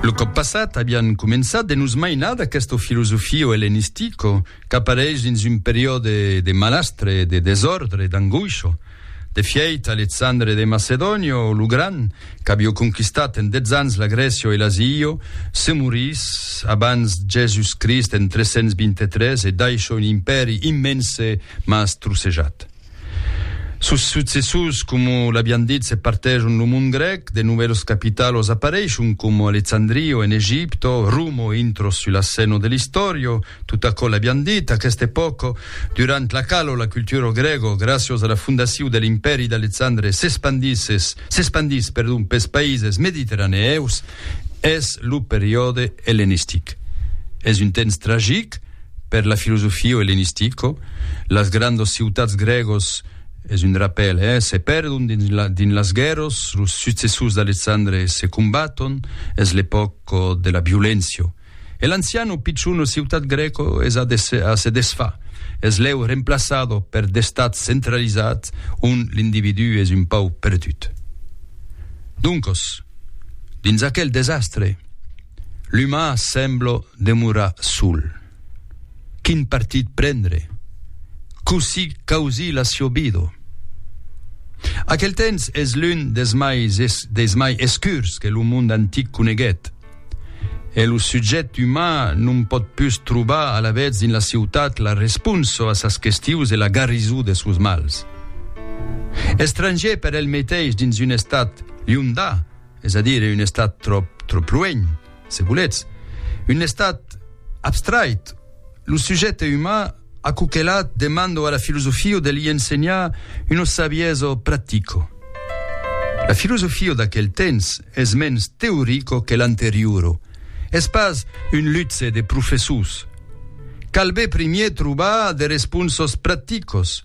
Lo còp passat avián començat de nos mainar d'aquesto filosofio ellenistico qu'apareish dins un periòde de malastre, de desòrdre, d'angoisho. De fièit, Alexandre de Macedonio, lo Gran, qu'avió conquistat en dètz ans la Grècio e l'Asio, se morís abans Jèsus Crist en 323 e daisho un impèri immense mas trossejat. Sos successors, coma l'avián dit, se partejon lo mond grèc, de novèlos capitalos apareishon, coma Alexandrio en Egipto, Romo intro sul assèno de l'istòrio, tot aquò l'avián dit, aquesta epòca, durant la quala la cultura grèga, gràcios a la fondacion de l'Impèri d'Alexandre, s'espandisses, s'espandís, perdon, pels païses mediterraneèus, es lo periòde ellenistic. Es un temps tragic. per la filosofio elenistico, las grandos ciutats grègos, es un rapèl, eh, se pèrdon dins la, dins las guèrros, los successors d'Alexandre se combaton, es l'epòca de la violéncia. E l'ancian o pichon ciutat grèco es a, des, a se desfar, es lèu remplaçado per d'estats centralizats ont l'individú es un pauc perdut. Doncos, dins aquel desastre, L'uman sembla demorar sol. Quin partit prendre? Cossí causir la siò vida? Aquel temps es l'un des mai, des mai escurs que lo mond antic coneguèt. E lo subjèct uman non pòt pus trobar alavetz dins la ciutat la responsa a sas questius e la garrisó de sos mals. Estrangier per el meteis dins un estat liondà, es a dire un estat tròp, tròp luènh, se volètz, un estat abstrait, lo sujècte uman aquò que la demando a la filosofio de li ensenhar una sabiezo practico. La filosofio d'aquel temps es mens teorico que l'anteriuro, es pas un lutze de professors, calbe primier trobar de responsos practicos,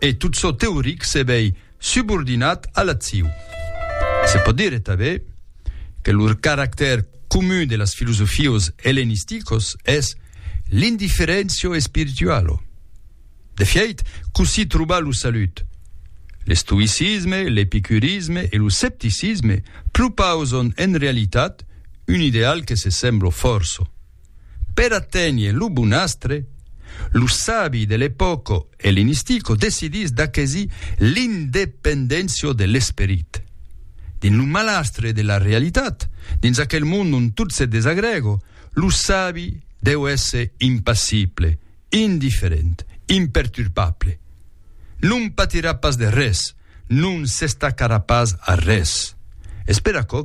e tot çò teoric se vei subordinat a l'acciu. Se pòt dire tanben que lo caractèr comun de las filosofios ellenisticos es l'indiferentio spiritualo. De fièit, cossí trobar lo salut? L'estoïcisme, l'epicurisme e lo scepticisme propauson en realitat un ideal que se semblo fòrça. Per aténher lo bonastre, lo sabi de l'epòca elenistico decidís d'aquesir l'independéncia de l'esperit. Dins lo malastre de la realitat, dins aquel mond ont tot se desagrèga, lo sabi deu èsser impassible, indiferent, imperturbable. Non patirà pas de res, non s'estacarà pas a res. Es per aquò